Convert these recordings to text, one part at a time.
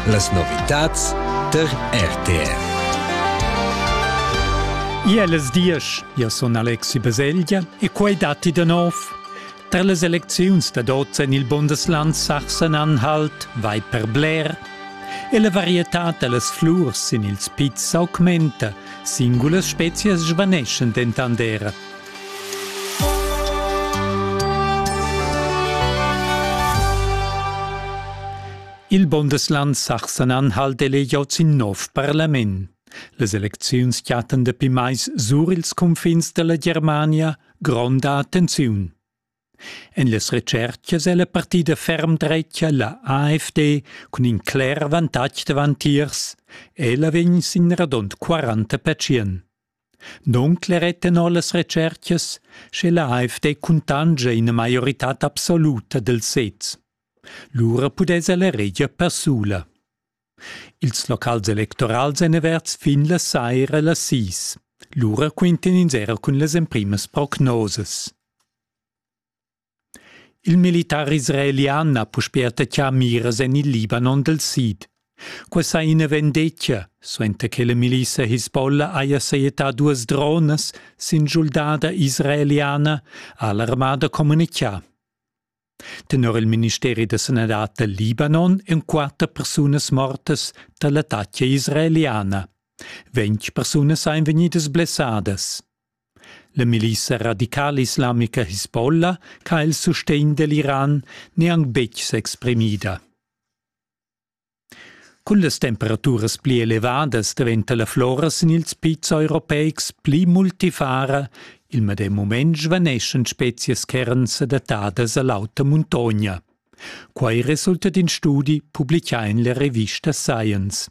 Las novitads tar RTR. Ia las diesch, ia sun Alexi Baselgia e quai datti da nov. Tar las elecziuns da oz en il Bundesland Sachsen-Anhalt vai per bler e la varietà da las flurs sin ils pizs s'augmenta, singulas spezias svaneschan dentant era. Il Bundesland Sachsen-Anhalt hal delegiau sin nov parlament. Les elecziuns chatten dapi mais sur ils confins della Germania gronda attenziun. En las retschertgas è la partida ferm dretga la AFD cun in cler vantag davantiers. Ella vegn sin radund 40 pertschien. Non cleret tenor las retschertgas, sche la AFD cuntangia ina maioritad absoluta del sez. Lura pudess ella reger persula. Ils locals electorals èn averts fin la saira las sis. Lura quintan ins era cun las emprimas prognosas. Il militar israelian ha puspè attaccà miras en il Libanon dal sid. Qua sa ina vendetga, suenter che la milissa Hisbollah haja sajettà duas dronas sin schuldada israeliana, ha l'armada communitgà. Tenor il ministeri da sanadad dal Libanon en quatter persunas mortas da l'attacca israeliana. Ventg persunas ein vegnidas blessadas. La milissa radicala islamica Hezbollah che ha il sustegn dell'Iran neanc betg s'exprimida. Cun las temperaturas pli elevadas daventa la flora sin ils pizs europeics pli multifara. Il medem mument svaneschan spezias ch'eran sedattadas a l'auta muntogna. Quai resulta d'in studi publicà en la revista Science.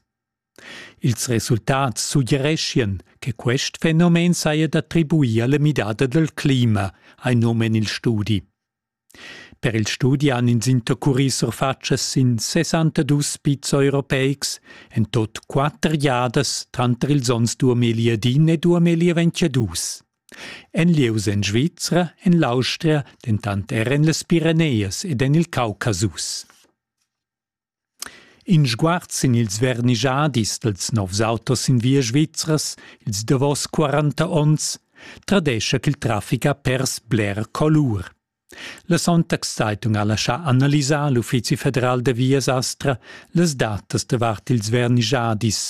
Ils resultats suggereschian che quest fenomen saja d'attribuir alla midada dal clima, ha num en il studi. Per il studi han ins intercurì surfatschas sin sessantadus pizs europeics en tot quatter giadas tranter ils onns duamilli ed in e duamilli ventgadus. En lieus en Svizra, en l'Austria, dentant er en las Pireneias ed en il Caucasus. In sguard sin ils vernischadis dals novs autos sin via svizras, ils davos quaranta onns, tradescha ch'il trafic ha pers bler colur. La Sonntagszeitung ha laschà analisar l'Uffizi federal da vias Astra las datas davart ils vernischadis.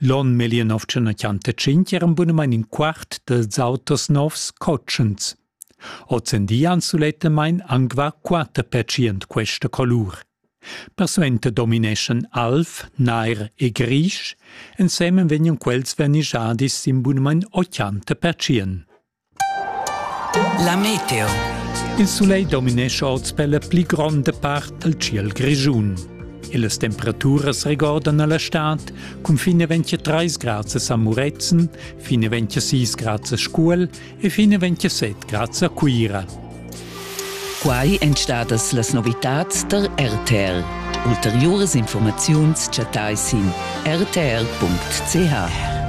L'on 1925 eran bunamain in quart dals auters novs cotschens. Ozendi han sulettamain anc var quatter pertschient questa colur. Persuenter domineschan alv, nair e grisch, ensemen vegnan quels vernischadis sin bunamain 80%. La meteo. Il sulegl dominescha oz per la pli gronda part dal ciel grischun. E las temperaturas regordan alla stad cun fine 23 grad a Muretzen, fine 26 grad a Scuol e fine 27 grad a Cuira. Quai èn stadas las novitads tar RTL. Ulteriuras informaziuns chattai sin rtr.ch.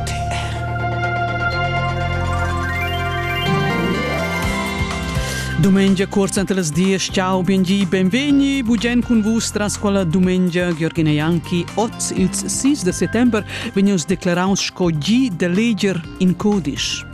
Domenica corsa entre las dies. Ciao, benvenuti, benveni. Bugen cun vus tras quella domenica Gheorghina Janki. Oz ils 6 de settembre vegnius declaraus sco gi de leger in codice.